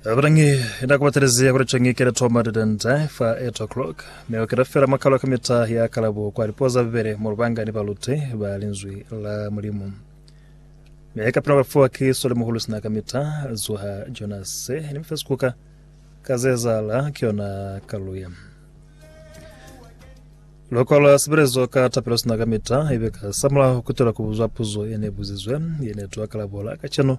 Abadangi enda kubatalezia kuri chongi kera toma dadanda fa 8 o'clock me okera fela makalo kamita ya kalabo kwa lipoza bibele mu lubanga ni balute ba linzwi la mulimu me kapina bafuwa ki sole muhulu sina kamita zuha jonas ni mfesi kuka kazezala ki yona kaluya loko la sebelezo ka tapelo sina kamita ibe ka samula kutela kubuzwa puzo ene buzizwe ene twa kalabola ka cheno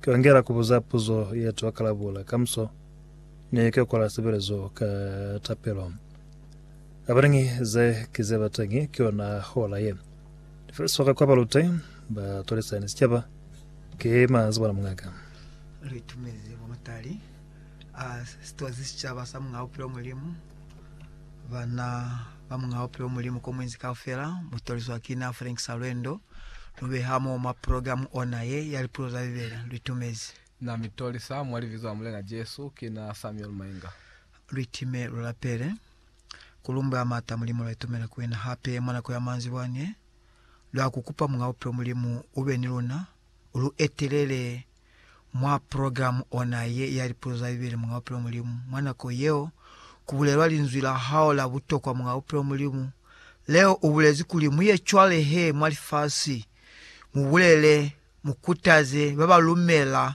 Ka ngela ku buza puzo ye to kalabula kamuso, mi ka kwala sebelezo ka tapelo. Abateñi ze ki ze ba teñi ki yona hola ye. Lifeliso ka kwa balute, ba tolisa ni sicaba. Ki manzibana muñaka. Li tumezi mwa matali a sitozi sicaba sa Muñ'a Bupilo Mulimu. Bana ba Muñ'a Bupilo Mulimu Komuinzi Kaufela, mu tolizwa ki na Frank Salwendo, lu beha mo mwa progilamu ona ye ya lipuzo za Bibele. Lu itumezi. Na mi tolisa mwa Libizo la Mulena Jesu. Ki na Samuel Mainga. Lu itime, lu lapele. Ku lumbwe a m'ata, Mulimu, lwa itumela ku wena hape mwa nako ya manzibwa n'e. Lwa ku kupa, Muñ'a Bupilo Mulimu, u be ni luna, u lu etelele. mwa programe ona ye ya Lipuzo za Bibele Monga Bupilo Mulimu. Mwa nako yeo, ku bulelwa linzwi la hao la butokwa Monga Bupilo Mulimu. Leo u bulezi kuli mu ye cwale he mwa lifasi, mu bulele, mu kutaze ba ba lumela,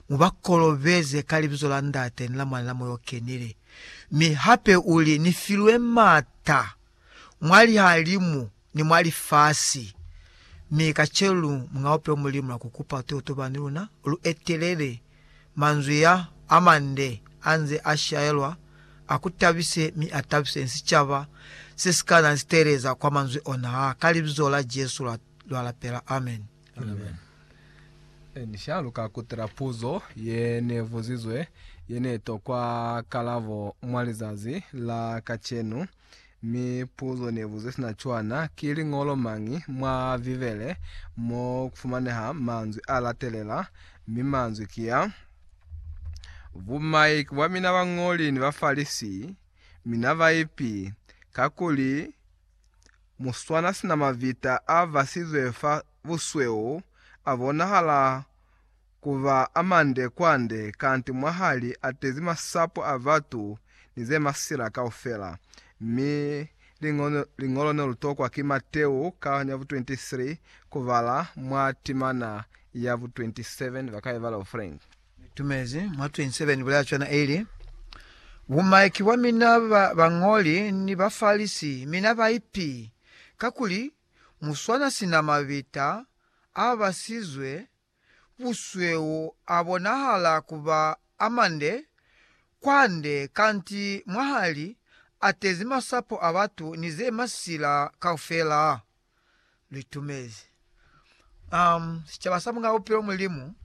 mu ba kolobeze ka Libizo la Ndate ni la Mwana ni la Moya o Kenile. Mi hape u li, Ni filwe m'ata. mwa lihalimu ni mwa lifasi. Mi kacenu muñaupe Mulimu na kukupa totobano ni luna, lu etelele manzwi ya amande anze a shaelwa, a ku tabise mi a tabise ni sicaba se si ka na liteeleza kwa manzwi ona ha. Ka Libizo la Jesu lwa, lwa lapela. Amen. Amen. Ni sha lu ka kutela puzo ye ne buzizwe, ye ne tokwa kalabo mwa lizazi la kacenu. Mi puzo nebuze sina cwana, Ki liñolo mañi mwa Bibele mo kufumaneha manzwi a latelela? Mi manzwi ki a, Bumaiki bwa mina bañoli ni Bafalisi, mina baipi! Kakuli muswana sina mavita a basizwe fa busweu a bonahala ku ba a mande kwande kanti mwaha li atezi masapo a batu ni ze masila kaufela. Mi liñolo, liñolo ne lu tokwa ki Mateu ka ya bu 23 ku bala mwa timana ya bu 27 ba ka ibala bu Frank. Ni tumezi mwa 27 ni bulela cwana ili, Bu maiki bwa mina ba bañoli ni ba Farisi, mina baipi! Kakuli mu swana sina mabita a basizwe busweu a bonahala ku ba a mande kwande kanti mwahali a tezi masapo a batu ni ze masila kaufela. Lu itumezi. Um, sicaba sa Mungabupilo Mulimu.